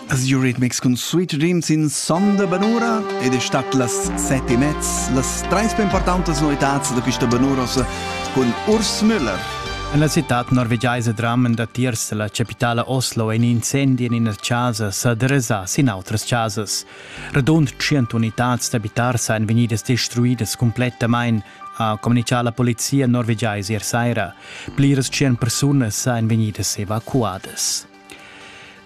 As Eurythmics cun Sweet Dreams in son da Banura ed è stat las set e mezz las trais più importanti novità da questa Banurosa con Urs Müller. En la citad norvegiaisa dramen datiers la capitala Oslo in incendi en ina casa sa derasà sin outras casas. Radund 100 unitads d'abitars ein vegnidas destruidas cumplettamain, ha communichà la polizia norvegiais ier saira. Pliras tschient persunas èn vegnidas evacuadas.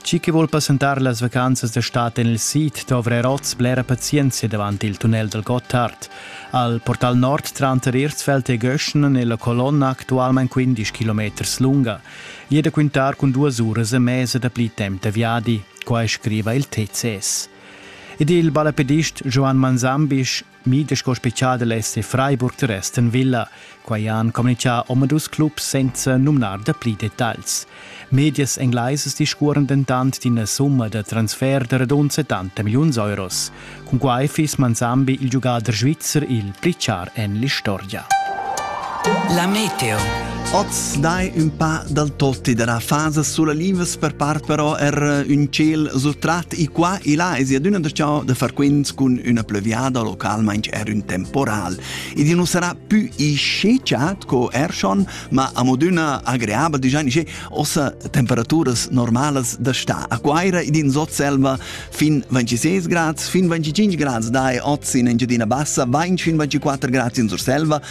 Chi che vuol passentar las vacanzas d'estate en il sid dovre oz blera pazienza davant il tunnel dal Gotthard. Al portal nord tranter Erzfeld e Göschnen è la colonna actualmente 15 km lunga. Jede quintar con duas uras e mese da pli temp da viadi, qua scriva il TCS. Ed il balapedist Joan Manzambisch Mide sco special es Freiburg der Resten Villa. Quai han communichà omadus clubs senza numnar da pli detagls. Medias englaises discuoran dentant d'ina summa da transfer da radund 70 milliuns euros. Cun quai fiss Manzambi il giugader svizzer il pli char en l'istorgia. La meteo. Oz dai ün pa dal totti dalla fasa sulla livas per part però er ün ciel surtrat i qua e là es adüna da ciò da far quints cun üna plevriada localmaing er ün temporal. Ed i nu sarà pü ischeciat co er schon, ma amodüna agreabel digià nisce ossa temperaturas normalas da sta. A Quaira ed in Sotselva fin 26 grads, fin 25 grads dai oz in Engiadina Bassa, 20 fin 24 grads in Surselva,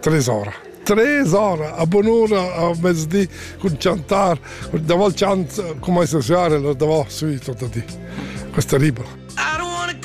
Tres ora. Tres ora a bon'ura a mezdi cun chantar, davanti chant come se suare, davant sui tutto di. Questa ribera.